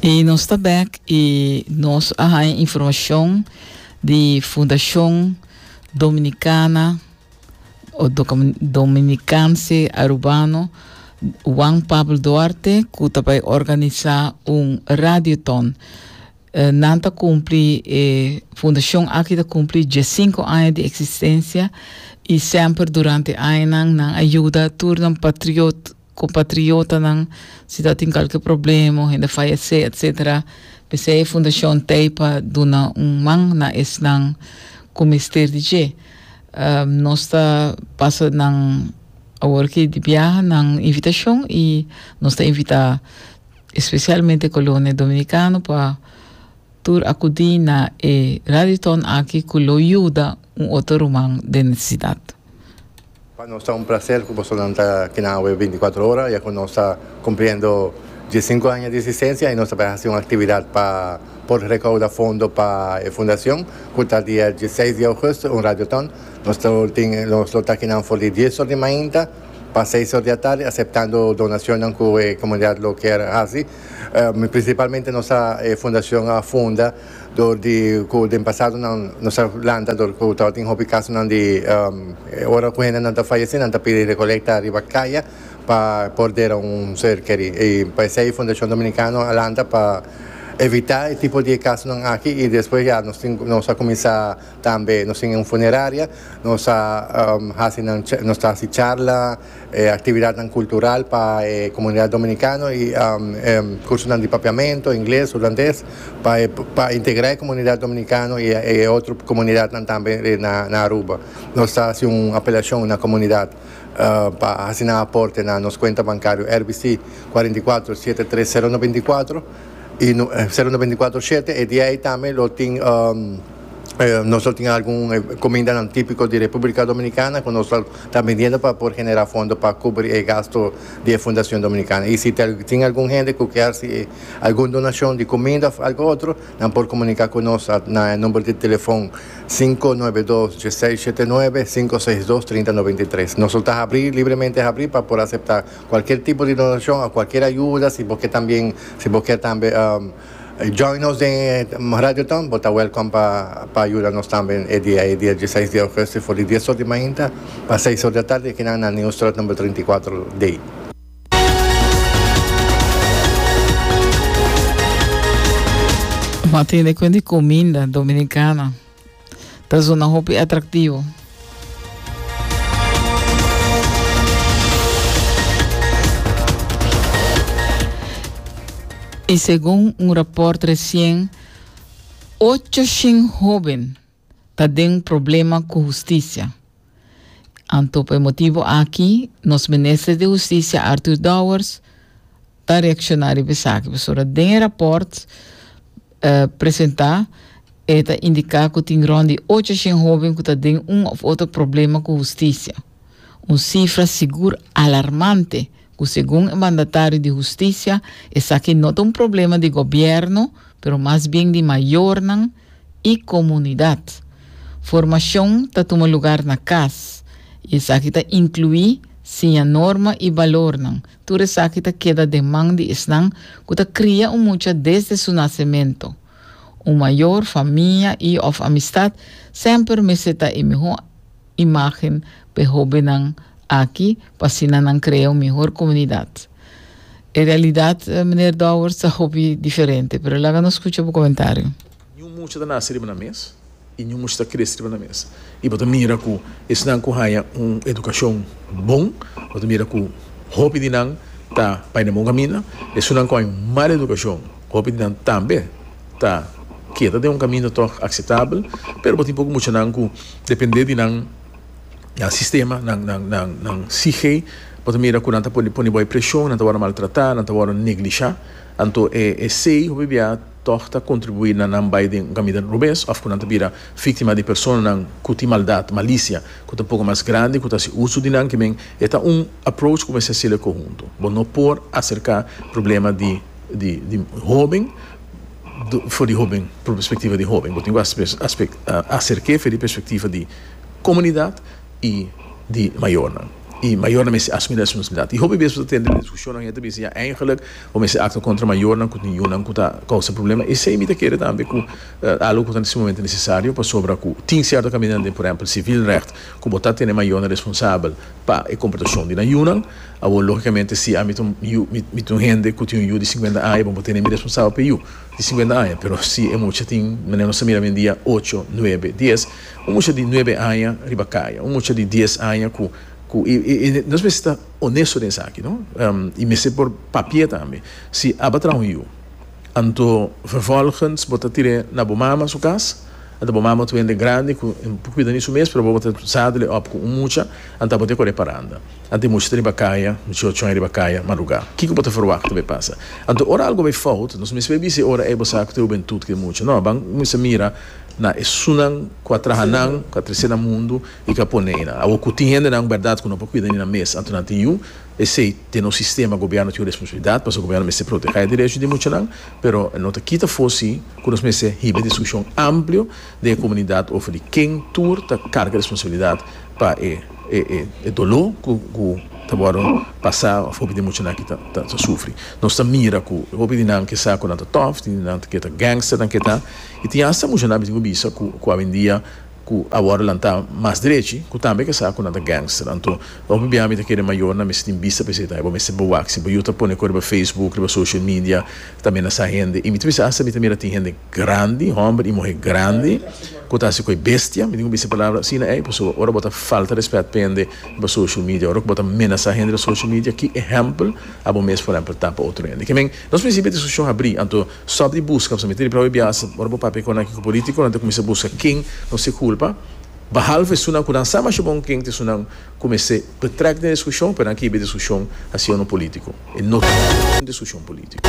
Y nos ta back y nos a haña informacion di Fundacion Dominicana o Doca- Dominicanse Arubano Juan Pablo Duarte cu ta bay organisa un radiothon. Eh, nan ta cumpli, eh, fundacion aki ta cumpli diescinco aña di existencia y semper durante añanan nan a yuda tur nan patriot Kompatriotanan, si ta tin kalke problema o hende fayesé etcétera, p'esei e fundashon ta ei pa duna un man na esnan ku mester di dje. Nos ta pasa nan awor ki di biaha nan invitashon i nos ta invitá espesialmente kolonia dominikano pa tur akudí na e radioton aki ku lo yuda un otro ruman den nesesidat. Pa nos ta un placer cu bosonan ta kina awe binticuatro ora ya cu nos ta cumpliendo diescinco aña di existencia y nos ta por haci un actividad pa por recauda fondo pa e fundacion cu ta dia diesseis di augusto un radioton nos ta lo tin nos lo ta kinan for di dies or di mainta pa seis or di atardi aceptando donacionnan cu e comunidad lo kier haci principalmente nos ta e fundacion a funda Dor di ku den pasado nan nos a lanta dor ku tabatin hopi kasonan di ora ku hendenan ta fayesé nan ta pidi rekolekta riba kaya pa por dera un ser kerí. I pa esei Fundashon Dominikano a lanta pa evitá e tipo di e kasonan aki i despues ya nos tin nos a kuminsá Tambe nos tin un funeraria, nos a hasi nan nos ta hasi charla, actividadnan cultural pa e comunidad dominicano y cursonan di Papiamento, ingles, hulandes, pa e pa integra e comunidad dominicano y e otro comunidadnan tambe na Aruba. Nos ta hasi un apelacion na comunidad pa hasi nan aporte na nos cuenta bancario RBC cuarenta y cuatro, siete tres cero noventa y cuatro y no cero noventa y cuatro shete e di ay tambe lo tin. Nos lo tin algun comindanan tipico di Republica Dominicana cu nos lo ta vendiendo pa por genera fondo pa cubri e gasto di e Fundacion Dominicana. Y si tin algun hende cu ker haci algun donacion di cuminda of algo otro nan por comunica cu nos na e number di telefon sinku nuebe dos diesei shete nuebe sinku seis dos trinta noventa y tres. Nos lo ta habri, libremente habri, pa por acepta cualkier tipo di donacion of cualkier ayuda si bo ke también si bo ker tambe. Join nos den e Radioton, bo ta wèlkòm pa pa yuda nos tambe e dia e dia di seis di ougùstù for di dies or di mainta pa seis or di atardi aki nan na Nieuwstraat number trinta i kuater D. Bo a tende kuen di kuminda dominikana? ta zona hopi atractivo. Y segun un rapport recien, ocho shin hoben ta den problema cu husticia. Anto pa e motibu aki nos Minister di Hustisia Arthur Dowers ta reakshoná riba esaki pasobra den e rapòrt presentá e ta indiká ku tin rònt di ocho shen hóben ku ta den un òf otro problema ku hustisia, un sifra sigur alarmante ku segun e mandatario di hustisia esaki no ta un problema di gobièrnu pero mas bien di mayornan i komunidat. Formashon ta tuma lugar na kas, i esaki ta inkluí siña norma i balornan. Tur esaki ta keda den man di esnan ku ta kria un mucha desde su nasementu. Un mayor, famia i òf amistat semper mester ta e mihó. imagen p'e hobennan aki pa asina nan krea un mihor komunidat. E realidat, Meneer Dowers, ta hopi diferente, pero laga nos skucha bo komentario. Niun mucha ta nase riba nan mes i niun mucha ta krese riba nan mes. I bo ta mira ku esnan ku haña un edukashon bon, bo ta mira ku hopi di nan ta bai na bon kaminda. Esunnan ku haña un mal edukashon, hopi di nan tambe. ta keda den un kaminda tòg akseptabel, pero bo tin poko muchanan ku dependé di nan nan sistema, nan nan nan nan psike, bo ta mira ku nan ta por pone bo e preshon, nan ta wòrdu maltratá, nan ta wòrdu neglishá. Anto e esei hopi bia tòg ta kontribuí na nan bai den un kaminda robes òf ku nan ta bira víktima di personanan ku tin maldat, malisia, ku ta poko mas grandi, ku ta hasi uso di nan kimin. E ta un approach ku mester hasi'l e kohuntu. Bo no por aserká problema di. di di hoben for di hoben por perspectiva di hoben bo tin ku acerke for di perspectiva di comunidad y di mayornan y mayornan mester asumi responsabilidad y hopi bes bo ta tende discusion nan y ta bisa ya eigenlik bo mester actua contra mayornan cu tin yunan cu ta causa problema esey mi ta kere tambe cu algo cu ta en su momento necesario pasobra cu tin cierto caminandia por ehempel civilrecht cu bo ta tene mayornan responsabel pa e comportacion di nan yunan. Awor, lógikamente, si ami ta un yu, mi ta un hende ku tin un yu di sinkuenta aña, bo por tene mi responsabel pa e yu di sinkuenta aña. Pero si e mucha tin, manera nos ta mira oyendia, ocho, nuebe, dies, un mucha di nuebe aña riba kaya, un mucha di dies aña ku, ku, i, i, i nos mester ta onesto den esaki, no? I mester por papia tambe si aba traha un yu. Anto vervolgens bo ta tir'é na bo mama su cas, anta bo mama ta un hende grandi cu por cuida ni su mes, pero bobo ta zadele op cu un mucha, anta bo te cor'é paranda, anta e mucha ta riba caya, mucha ochon riba caya, madruga. Kico bo ta verwachta bay pasa? Anto ora algo bay fout, nos mester bis'é ora ey bo sa cu ta hubentud cu e mucha. No, ban mester mira na esunnan cu a traha nan, cu a trecé nan mundu y cu a pone ey nan. Awor cu tin hendenan berdad cu no por cuida ni nan mes, anto nan ta yu esey. Den un sistema gobièrnu tin un responsabilidat pasobra gobièrnu mester protegé derecho di muchanan, pero e no ta kita fosi ku nos mester hiba e diskushon amplio den e komunidat over di ken tur ta karga responsabilidat pa e e doló ku ku ta wòrdu pasá òf hopi di e muchanan aki ta ta sufri. Nos ta mira ku hopi di nan ke sa ku nan ta tòf, tin di nan ke ta gangster nan ke ta i tin asta muchanan mi tin ku bisa ku ku awendia, cu awor elan ta mas drechi, cu tambe kesa cu nan ta gangster. Anto, hopi bia mi ta kere mayornan mester tin bista pa esei tambe. Bo mester bo wak si bo yu ta pone cu riba Facebook, riba social media, ta amenasa hende. Y mi ta bisa hasta mi ta mira tin hende grandi, homber y muhe grandi, cu ta haci cu e bestia, mi tin cu bisa e palabra asina ey, pasobra ora bo ta falta respet pa hende riba social media, ora cu bo ta amenasa hende riba social media, ki ehempel abo mes, por ehempel, ta pa otro hende? Ke men, nos principio e discusion habri, anto, Stop di buska, nos a mete riba e bias ora bo papia con aki cu politico, nan ta cuminsa buska ken nos ta culpa, bahalf esunnan cu nan sa masha bon ken ta esunnan cu mester betrek den discusion, pero nan kiba e discusion haciendo politico, e no ta discusion politico.